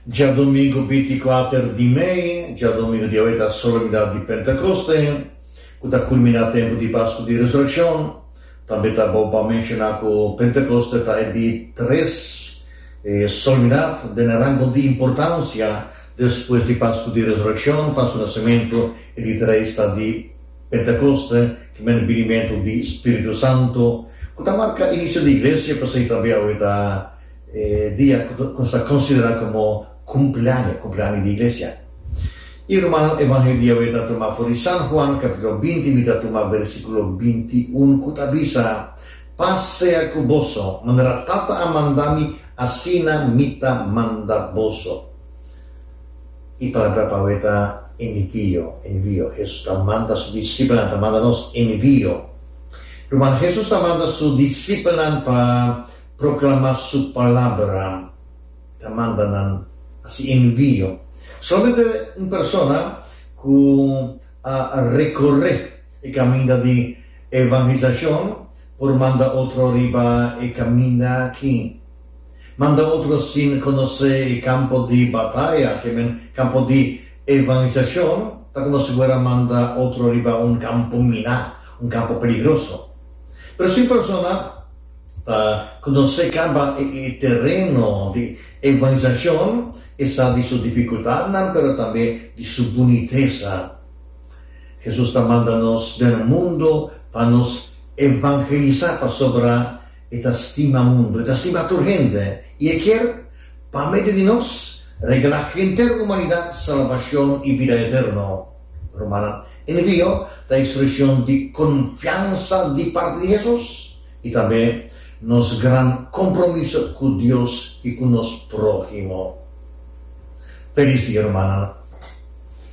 Djadomingu binti-kuater di mei, djadomingu di awor ta Solemnidat di Pentekoste, ku ta kulminá tempu di Pasku di Resurekshon. Tambe ta bon pa menshoná ku Pentekoste ta e di tres Solemnidat den e rango di importansia despues di Pasku di Resurekshon, Pasku Nasimentu, e di tres ta di. Pentekoste, ki mester binimentu di Spiritu Santu, ku ta marka inisio di Iglesia, pasei tambe awe ta e dia ku ta ku ta konsiderá komo kumpliaño, kumpliaño di Iglesia. I rumannan, Evangelio di Yahweh ta tumá for di San Juan, kapítulo binti, mi ta tumá bersíkulo binti un ku ta bisa, Pas sea ku boso, manera Tata a manda mi, asina mi ta manda boso. E palabra pa awe ta envio, envio. Hesus ta manda su disipelnan, ta manda nos envio. Ruman, Hesus ta manda su disipelnan pa proklamá su palabra, ta manda nan hasi envio. Solamente un persona ku a rekorré e kaminda di evangelisashon por manda otro riba e kaminda akí. Manda otro sin conoce e campo di bataya, que men campo di evangelisacion, ta como si bo era manda otro riba un campo mina, un campo peligroso. Pero si un persona ta conoce caba e tereno di evangelisacion, e sa di su dificultadnan, pero tambe di su bunitesa. Jesus ta manda nos den mundo pa nos evangelisa, pasobra E ta stima mundu, e ta stima tur hende, i e kier, pa medio di nos, regala henter humanidat salbashon i bida eterno. Rumannan, e nvio ta ekspreshon di konfiansa di parti di Hesus i tambe nos gran kompromiso ku Dios i ku nos próhimo. Felis dia, rumannan!